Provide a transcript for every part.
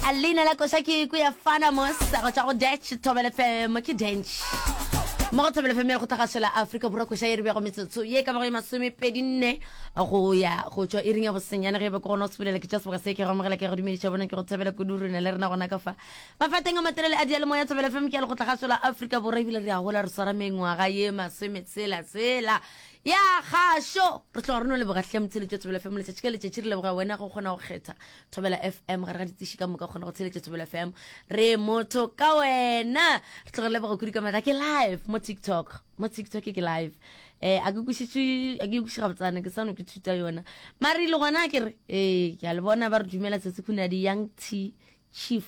A leina la koša ke ku ya fana mo sego tša go dutch thobele femo ke dench mo go thobele femo ya go tlhagasho la afrika borwa koša e re bego metsotso ye ka bago ye masomepedi nne go ya go tšwa e ring ya bosenyane ge e be ke gona o sebelela ke tša seboka se ke go amogela ke go dumediša bona ke go thabela kudu rena le rena gona ka fa mafateng a matelele a diale moya thobele femo ke ya le go tlhagasho la afrika borwa ebile re a gola re swara mengwaga ye masometsela tsela Ya gašo re tloga re no leboga hle motsheletši wa thobela fm letšatši ka letšatši re leboga wena go kgona go kgetha thobela fm gare ga ditsiši ka moka kgona go tsheletša thobela fm re motho ka wena re tloga re leboga kudu ka matla ke live mo tiktok mo tiktok ke live um a ke kwešišwe a ke kwešiša gabotsana ke sano ke thuta yona mare ile gona ke re ee ke a le bona ba re dumela tsatsi khunadi young t chief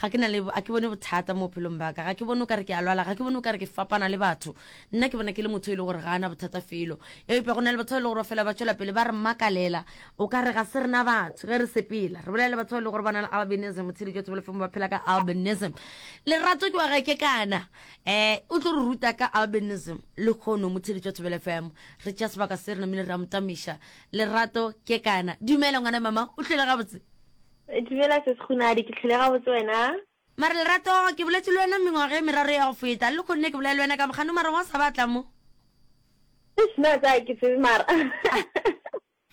Ga ke na le, a ke bone bothata mo bophelong ba ka. Ga ke bone o ka re ke a lwala. Ga ke bone o ka re ke fapana le batho. Nna ke bona ke le motho yo e lego gore ga a na bothata felo. Eupša go na le batho ba e lego gore ba fela ba tšwela pele ba re makalela. O ka re ga se rena batho ge re sepela re bolela le batho ba e lego gore ba na le albinism, botshelo jwa tsebolofe mo ba phela ka albinism. Lerato ke wa ga ke kana, um o tlo re ruta ka albinism lekgono mo Theeletšo ya Thobela FM. Re tšea sebaka se re namile re a mo tamiša. Lerato ke kana. Dumela ngwana mama, o tlile gabotse? Dumela Sis Kgunadi, ke tlhole gabotse wena. Mare Lerato, ke boletše le wena mengwaga e meraro ya go feta, le lekhono ne ke bolela le wena ka bokgano mara wa sa batla mo. Eish na tsa ke tsebe mara.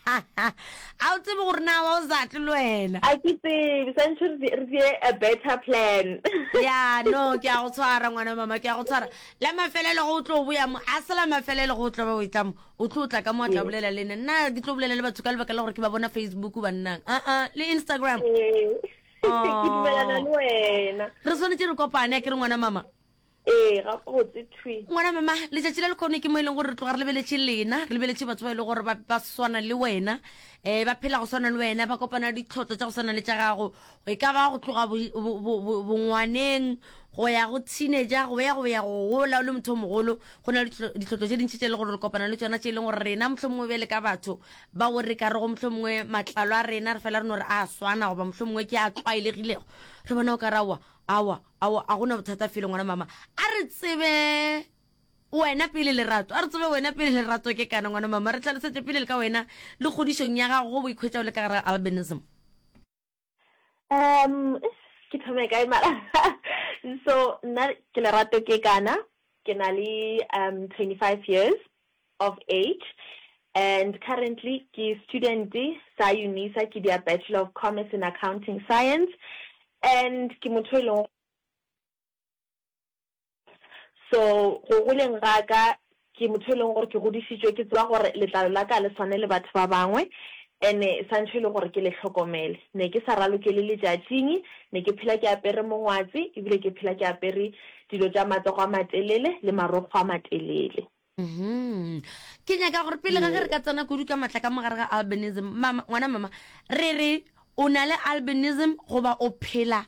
A o tsebe gore na wa o sa tle le wena. A ke tsebe, santšho re tse re tse a better plan. Ya no ke a go tshwara ngwana mama ke a go tshwara. La mafelelo go o tlo boya mo, a se la mafelelo go o tlo ba o e tla mo. o tlo tla ka mo a tla bolela le nna nna ke tlo bolela le batho ka lebaka la gore ke ba bona facebook bannang aa ah, ah, le instagram oh. re tshwanetse re kopane a ke re ngwana mama ee ga botse twi ngwana mama letsatsi la lekgone ke mo e leng gore re tloga re lebeletse lena re lebeletse batho ba e leng gore ba swana le wena um ba phela go swana le wena ba kopana ditlhotlo tsa go swana le tsa gago e ka ba go tloga bongwaneng go ya go teenager go ya go ya go gola o le motho o mogolo go na le ditlhotlo tše dintši tše e le gore re kopana le tsona tše e leng gore rena motlho mongwe bjale ka batho ba o re ka rego motlho mongwe matlalo a rena re fela re no re a swana goba motlho mongwe ke a tlwaelegilego re bona o ka ra wa awa awa a gona bothata fele ngwana mama a re tsebe wena pele lerato a re tsebe wena pele lerato ke kana ngwana mama re tlhalosetse pele le ka wena le kgodišong ya gago go boikhwetša o le ka gara albinism Um ke thome kae mara so nna ke lerato ke kana ke na le um 25 years of age and currently ke student sa unisa ke dia bachelor of commerce in accounting science and ke motho e leng So go goleng ga ka ke motho e leng gore ke godišitšwe ke tseba gore letlalo la ka le swane le batho ba bangwe ene santšho e le gore ke le hlokomele ne ke sa ralokele letšatšing ne ke phela ke apere mongwatse ebile ke phela ke apere dilo tša matsogo a matelele le marokgo a matelele ke nyaka gore pele ga ge re ka tsena kudu ka matla ka mogare ga albinism mama ngwana mama re re o na le albinism goba o phela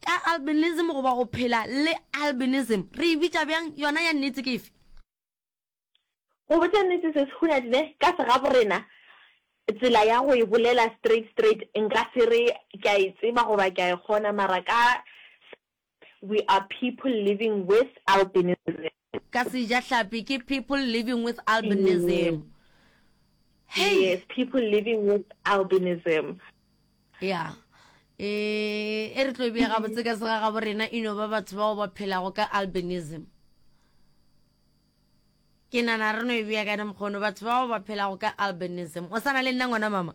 ka albinism goba o phela le albinism re e bitša bjang yona ya nnete ke efe go botša nnete se se huna dine ka segaborena tsela ya go e bolela straight straight nka se re ke a e tseba goba ke a e kgona mara ka We are people living with albinism. Ka sejahlapi ke people living with albinism. Hei! Yes, people living with albinism. Ya. E, e re tlo bea gabotse ka sega gabo rena e no ba batho bao ba phelago ka albinism. Ke nana re no e bea ka mokgono batho bao ba phelago ka albinism. O sana le nna ngwana mama?